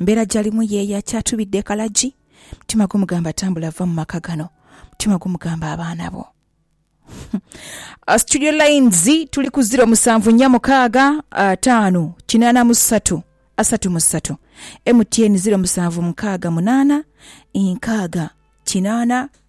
Embeera gyalimu ye ya kyatubidde kalagi. Mutima gumugamba tambula vva mu maka gano. Mutima gumugamba abaana bo. Studio lines tuli ku ziro musanvu nnya mukaaga ataano kinaana mu ssatu asatu mu ssatu. MTN ziro musanvu mukaaga munaana nkaaga kinaana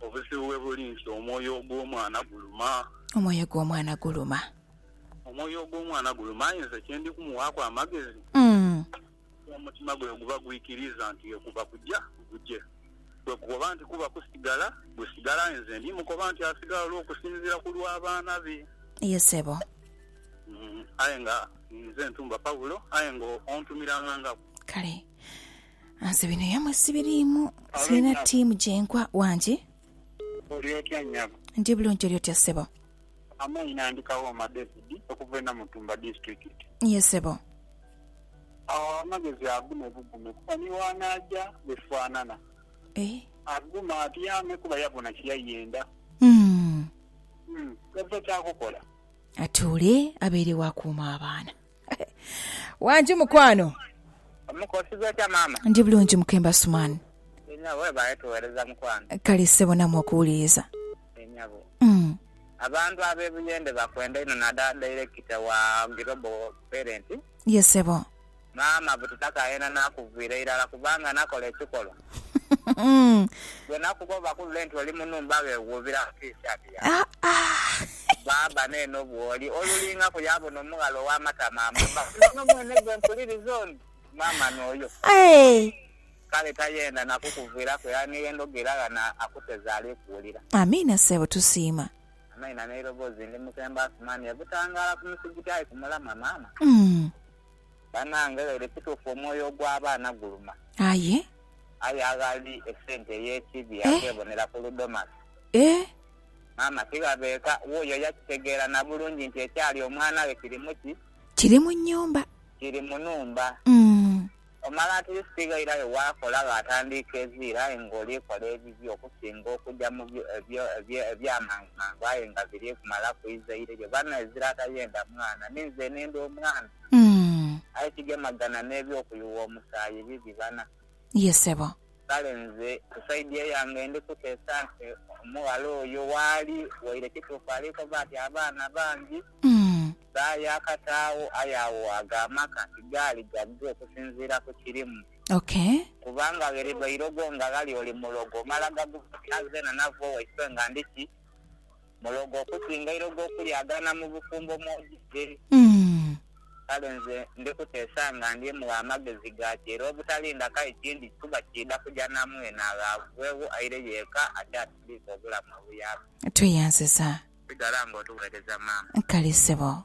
Obuzibu we buli nti omwoyo ogw'omwana guluma. Omwoyo gw'omwana guluma. Omwoyo ogw'omwana guluma, aye nze kye ndi kumuwaaku amagezi, omutima gwe guba gwikiriiza nti ye kuba kuja guje. Bwe gukoba nti kuba kusigala, gusigala, aye nze ndi mukoba nti asigala olw'okusinziira ku lw'abaana be. Ye sebo. Aye nga ninze ntumba Paulo, aye nga ontumira ng'angaku. Kale. Nze bino yamwe sibiriimu, sirina ttiimu gye nkwa. Wangi. Oli otya nnyabo? Ndi bulungi, oli otya ssebo? Amaina, ndi Kawooma David okuva e Namutumba Disitulikiti. Yee ssebo. Agho amagezi agume bugume kuba ni bw'anaaja bifaanana. Agume atyame kuba yabona kye yayenda. Umm. Umm. Ova kyakukola. Atuule abeere wa kuuma abaana. Wangi mukwano. Omuka osiiba otya maama? Ndi bulungi mukemba Suman. Enyabo webale tuwereza mukwano. Kale sebo namwe okuwuliriza. Enyabo. Mm. Abantu abe Buyende bakwenda inho nadala director wa Global Parent. Yes sebo. Maama bututaka yena nakuvira irala kubanga nakola ekikolwa. Gwe nakuba obakulule nti oli munumba bewuubira mu T-shirt yaabwe. Baaba neeno bwoli olulingaku yaabona omughala ow'amatama amabba. Nono mwene gwe mpuliriza ono maama n'oyo. Kale tayenda na kukuviiraku era ni ye ndhogo era ghano akuteze ali kuwulira. Amiina ssebo tusiima. Amaina n'eirobozi ndi Mukembo Asumani e Butangaala ku musigiti aye ku mulamwa maama. Banange lero ekitufu omwoyo ogwa baana guluma. Aye. Aye aghali esente eyekibi Eh. aghebonera ku ludomasi. Eeh. Maama tighabe eka wuuyo yakitegeera nabulungi nti ekyali omwana we kiri muki? Kiri mu nyumba. Kiri mu numba. Umm. Omala at least ghairayo wakola ghatandiika eziira aye nga oli kola ebibi okusinga okuja mu byo ebyo ebyamangu mangu aye nga biri kumalaku ize ire lyo. Bano ezira tayenda mwana ni nze nenda omwana. Umm. Aye kigemagana n'eby'okuyuwa omusaayi bibi bana. Ye sebo. Kale nze ku side eyange ndi kuteesa nti omughala oyo waali waire kituufu ali koba ati abaana bangi Umm. ba yaakataagho aye agho ago amaka tigaali gagge okusinziira ku kirimu. Okay. Kubanga gheridha eirogo nga ghali oli mulogo omala gaguba oti aze na nava owaiswe nga ndi ki? Mulogo okusinga ilogo okulyagaana mu bufumbo mw'oidhidhe. Kale nze ndi kuteesa nga ndye mugha amagezi ga kyeere obutalinda kai kindi kikuba kiidha kuja na mwene agho avugheegho aire yeeka akyasindiike obulamu obuyaaka. Tweyanziza. Sigala nga otugheereza maama. Kale sebo.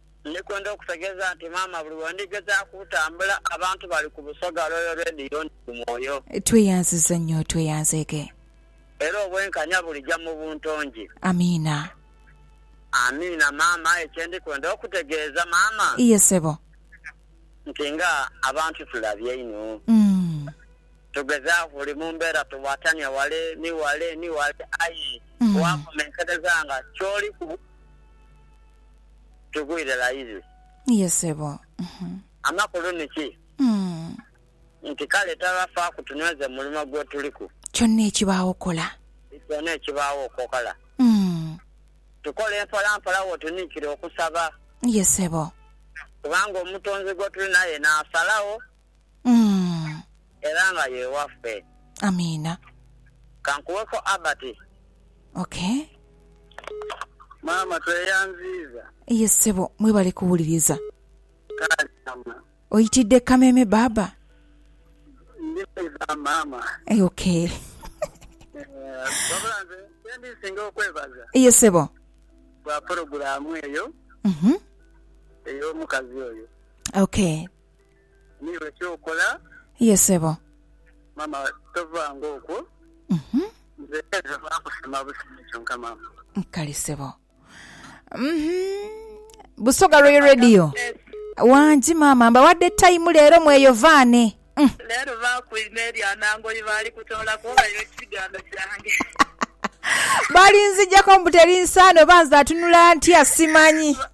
Ndi kwenda okutegeeza nti maama buli we ndigezaaku okutambula, abantu bali ku Busoga Royal Radio ndi ku mwoyo. Tweyanziza nnyo tweyanzeege. Era obwenkanya bulija mu bunto ngi. Amiina. Amiina maama aye kye ndi kwenda okutegeeza maama. Iye ssebo. Nti nga abantu tulabye inho. Umm. Tugezaaku buli mu mbeera tuwatania wale ni wale ni wale aye wakomenkereza nga kyoliku. tugwire layizi. Ye ssebo. Amakulu ni ki? Nti kale taba faaku tunweze mu mulimo gwe tuliku. Kyonna ekibaagho okola. Kyonna ekibaagho okola. Tukole mpolampola wo tuniikira okusaba. Ye ssebo. Kubanga Omutonzi gwe tuli naye n'asalagho. Umm. Era nga ye waffe. Amiina. Kankuweko Abati. Okay. Maama tweyanziiza. Ye ssebo, mwebale kuwuliriza. Kale maama. Oyitidde kameeme baaba? Ndi mwiza maama. Okay. Wabula nze kyendinsinga okwebaza. Ye ssebo. Lwa pulogulaamu eyo. Uhmm. Ey'omukazi oyo. Okay. Niiwe ky'okola. Ye ssebo. Maama tovanga okwo. Uhhm. Nze nva gha kusima busimi kyonka maama. Kale ssebo. Uhhm. Busoga Royal Radio. Wangi maama mbawadde time leero mweyovaane. Uhmm. Leero baakwime erya Nangoyi baali kutoolaku baira ekigambo kyange. Balinzigyako mbu teri nsaano oba nze atunula ntya simanyi.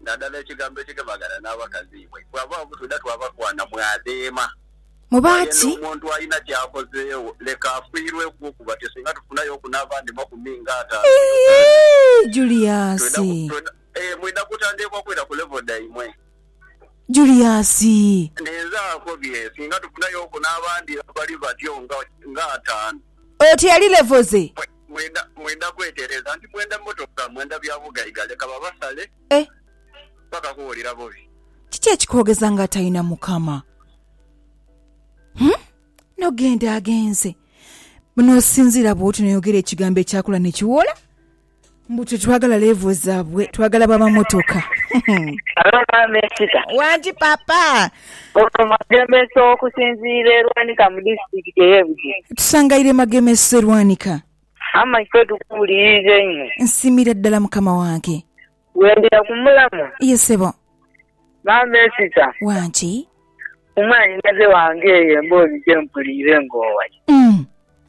Nadala ekigambo ekigemagana n'abakazi imwe bw'abagho butwidha twabakwana mwadheema. Muba Aye ati. n'omuntu alina ky'akozeegho, leka afiirweku okuba ti singa tufunayooku n'abandi makumi nga ataanu mu Uganda, Iiii Julius! twidha, twidha, eeh, mwidha kutandheekwa kwira ku level dhaimwe. Julius! Ninze akobye, singa tufunayooku n'abandi abali batyo nga, nga ataanu. Oti ali level ze? Mwenda, mwenda kwetereeza nti mwenda motoka, mwenda bya bugaiga, leka babasale Eh! paka kuwulira bubi. Kiki ekikoogeza nga atalina Mukama? Huh? Nogenda agenze. Bw'onoosinziira bw'otyo n'oyogera ekigambo ekyakula ne kiwola, mbu twe twagala leevo zaabwe, twagala baba motoka. Halo maama esita. Wangi papa. Ono Magemesa okusinziira e Lwanika mu disitulikiti ey'e Bugiri. Tusangaire Magemesa e Lwanika. Amaiko tukuwuliriza einho. Nsiimira ddala Mukama wange. Bwendira ku mulamwa. Ye ssebo. Maama Esita. Wangi. Ku mwanhinaze wange eyo emboozi gye mpuliire ng'owayo. Umm.